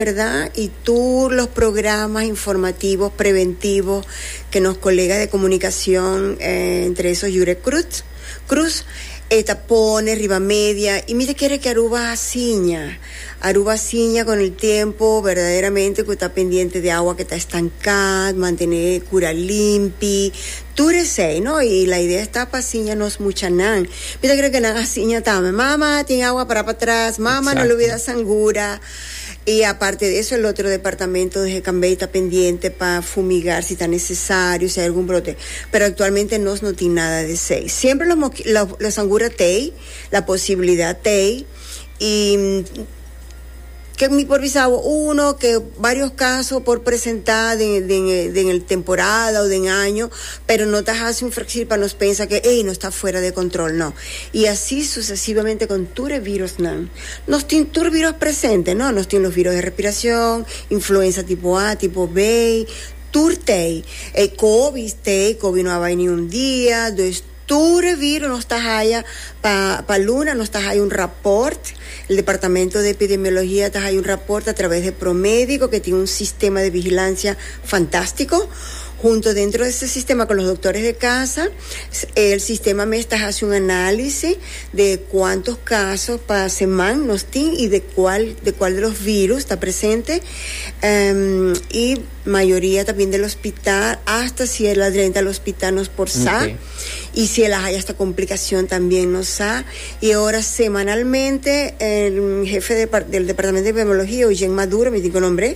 Berda i tur los programa informativo preventivo ke nos kolega de komunikacion entre esos Jure Cruz e ta pone riba media i mi ta kere ke Aruba a siña Aruba a siña kon el tiempo berdaderamente ku ta pendiente di awa ke ta estanka mantene kura limpi tur esei no i la idea esta pa siña nos muchanan mi ta kere ke nan a siña tambe mama tin awa para patras mama no lubida sangura. Y aparte de eso el otro departamento de Hecambay ta pendiente pa fumigar si ta necesario, si hay algun brote. Pero actualmente nos no tin nada de esey. Siempre los mosqui lo los sangura t'ey, la posibilidad t'ey y ke mi por bisa awa uno ke varios casos por presenta den den den el temporada o den año pero no ta haci un fracci pa nos pensa ke ey nos ta fuera de control, no. Y asi sucesivamente con tur e virusnan. Nos tin tur biroh presente, no. Nos tin los biroh e respiracion, influenza tipo A, tipo B, tur tey. Ey covis tey, covi no a bay ni un dia, dus tur e virus nos ta haya, pa pa luna nos ta haya un rapport, el departamento de epidemiologia ta haya un rapport a traves de Promedico ke tin un sistema de vigilancia fantastico, hunto dentro de ese sistema con los doctores de casa. E sistema mes ta hasi un análisi de kuantu kaso pa seman nos tin i de kual de kual de los virus ta presente. I mayoria ta bin den lospital asta si e la drenta lospital nos por sa. I si el a haya asta komplikashon también nos sa. I e ora semanalmente el hefe del departamento de epidemiologia Eugen Maduro mi tin ku e nombre.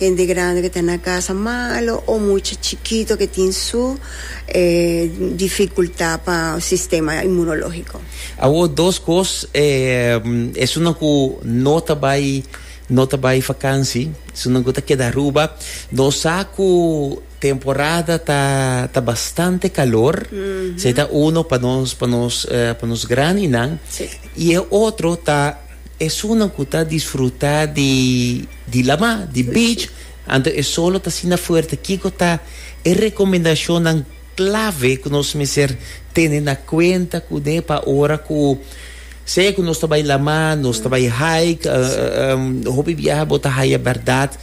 Hende grandi ke ta na kasa malo o mucha chikito ke tin su difikultá pa sistema inmunológiko. Awor dos kos esunnan ku no ta bai no ta bai vakansi, esunnan ku ta keda Aruba, nos sa ku temporada ta ta bastante kalor, esei ta uno pa nos pa nos pa nos grandinan i e otro ta Esunnan ku ta disfrutá di lama, di beach, anto e solo ta asina fuerte, kiko ta e rekomendashonnan klave ku nos mester tene na kuenta kuné pa ora ku sea ku nos ta bai lama, nos ta bai hike? Hopi biaha bo ta haya bèrdat,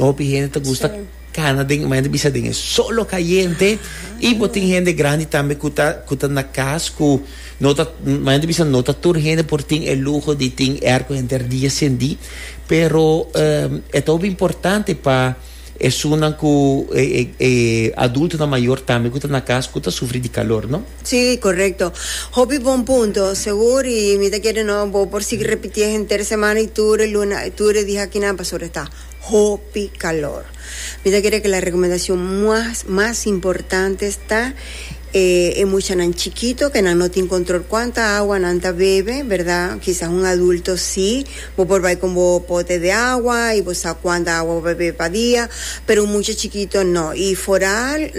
hopi hende ta gusta. Cana den mañana bisa den e solo cayente y bo tin hende grandi tambe cu ta cu ta na cas cu no ta mañana bisa no ta tur hende por tin e luho di tin air cu henter di encendi pero e ta hopi importante pa esunnan cu e e e adultonan mayor tambe cu ta na cas cu ta sufri di calor no. Si corecto hopi bon punto segur y mi ta kere no bo por sigui repiti henter semana y tur e luna y tur e dia akinan pasobra e ta Hopi calor. Mi ta kere cu la recomendacion mas mas importante ta e e muchanan chikito cu nan no tin control cuanta agua nan ta bebe, verdad, kisas un adulto si, bo por bay con bo pote de agua y bo sa cuanta agua bo ta bebe pa dia, pero un mucha chikito no, y foral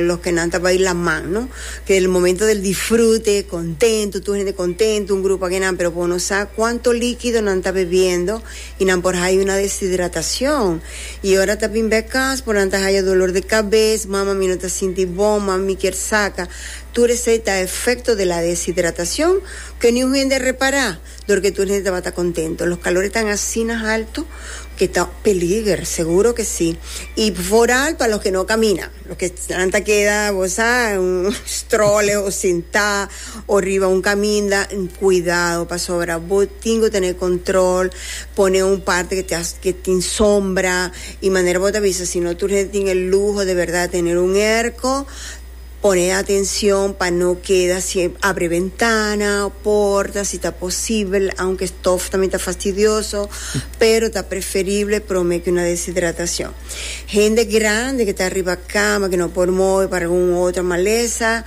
los que nan ta bay laman, no, que el momento del disfrute, contento, tur hende contento, un grupo aki nan, pero bo no sa cuanto liquido nan ta bebiendo. y nan por haya una deshidratacion y ora ta bin bek cas por nan ta haya dolor de cabez, mama mi no ta sinti bon, mama mi kier saca, tur esey ta efecto de la deshidratacion que niun hende a repara dor que tur hende tabata contento. Los calores tan asina alto que ta peliger, seguro que si, y foral pa los que no camina. Loke nan ta keda bo sa un stroller o sintá o riba un kaminda kuidado pasobra bo tin ku tene kontrol pone un parte ke ta ke tin sombra i manera bo ta bisa si no tur hende tin e luho de bèrdat tener un erko pone atenshon pa no keda siem abre bentana o porta si ta posibel aunke stof tambe ta fastidioso pero ta preferible promé ku na deshidratacion. Hende grandi ke ta riba kama ke no por move pa algun otro malesa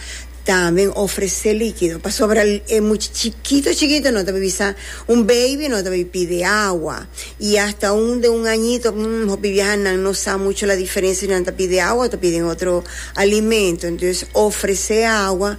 tambe ofrese likido pasobra e mucha chikito chikito no ta bay bisa un baby no ta bay pide awa y hasta un de un añito mm hopi biaha nan no sa mucho la diferencia si nan ta pide awa o ta piden otro alimento entonces ofrese awa